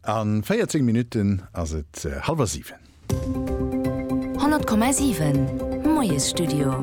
A 14 Minutten ass et hallwer siwen. 100,7 Moiesstudio.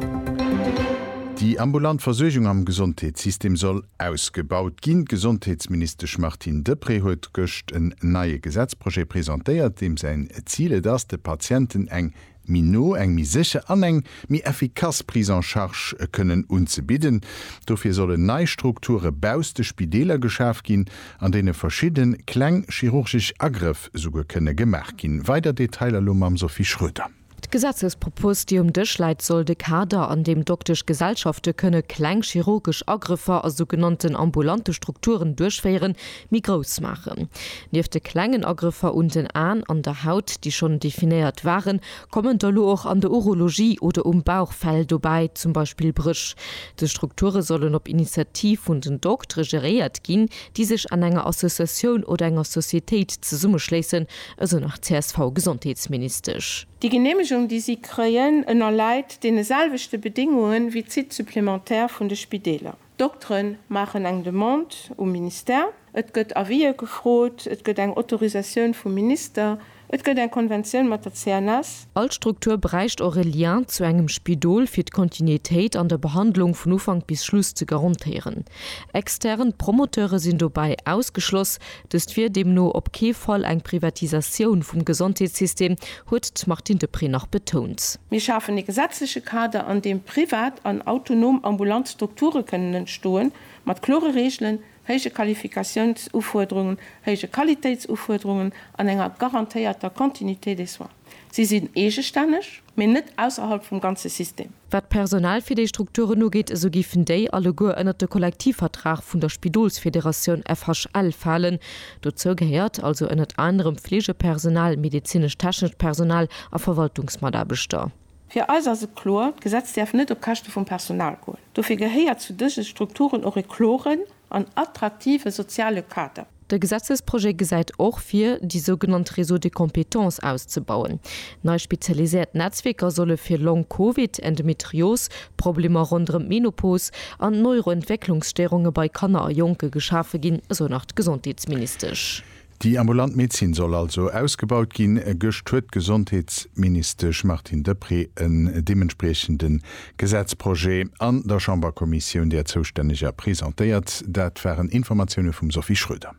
Déi ambulant Versuergung am Gesondheetssystem soll ausgebaut ginn. D'Gesondheetsministesch Martine Deprez huet gëscht en neie Gesetzprojet presentéiert, deem säin Zil et ass, de Patienten eng méi no, eng méi sécher an eng méi effikass Prise en charge kënnen unzebidden. Dofir sollen nei Strukture bausst de Spideeler geschaf ginn, an deene verschidde kleng chirurgesch Agrëff souguer kënne gemaach ginn. Weider Detailer elo mam Sophie Schroeder. D'Gesetzespropos, déi um Dësch läit, soll de Kader, an deem Doktesch Gesellschafte kënne kleng chirurgesch Agrëffer a sougenannten ambulante Strukturen duerchféieren, méi grouss maachen. Nieft de klengen Agrëffer un den Aen an der Haut, déi schonn definéiert waren, kommen der elo och an der Urologie oder um Bauchfell dobäi, zum Beispill Bréch. Dës Strukture sollen op Initiativ vun den Doktere geréiert ginn, déi sech an enger Associatioun oder enger Societéit zesummeschléissen, esou nach d'CSV-Gesondheetsministesch. Déi Geneemegung, déi si kréien, ënnerläit deene selwechte Bedéngunge wéi d'Sites supplémentaires vun de Spideeler. D'Doktere maachen eng Demande um Ministère, et gëtt Avisë gefrot, et gëtt eng Autorisatioun vum Minister, et gëtt eng Konventioun mat der CNS. All Struktur bräicht och e Lien zu engem Spidol, fir d'Kontinuitéit an der Behandlung vun Ufank bis Schluss ze garantéieren. Extern Promoteure sinn dobäi ausgeschloss, Dëst wier deemno op kee Fall eng Privatisatioun vum Gesondheetssystem, huet d'Martine Deprez nach betount. Mir schafen ee gesetzleche Kader, an deem privat an autonom ambulant Strukture kënnen entstoen, mat klore Reegelen, héije Qualifikatiounsufuerderungen, héije Qualitéitsufuerderungen an enger garantéierter Continuité des soins. Si sinn eegestänneg, mee net ausserhalb vum ganze System. Wat d'Personal fir déi Strukturen ugeet, esou géifen déi alleguer ënnert de Kollektivvertrag vun der Spidolsfederatioun FHL falen. Dozou gehéiert also ënnert anerem Fleegepersonal, medezinesch-technescht Personal a Verwaltungsmataarbechter. Fir eis ass et kloer, D'Gesetz däerf net op Käschte vum Personal goen. Dofir gehéiert zu dëse Strukturen och e kloren En attraktive soziale Kader. De Gesetzesprojet gesäit och vir, déi sougenannt Réseaux de compétences auszebauen. Nei spezialiséiert Netzwierker solle fir Long-Covid, Endometrios, Problemer ronderëm d'Menopos an d'Neuroentwécklungsstéierunge bei Kanner a Jonke geschafe ginn, esou nach d'Gesondheetsministesch. Déi ambulant Medezin soll also ausgebaut ginn. Gëscht huet d'Gesondheetsministesch Martine Deprez en deementspriechende Gesetzprojet an der Chamberkommissioun, där zoustänneger, presentéiert. Dat waren Informatioune vum Sophie Schroeder.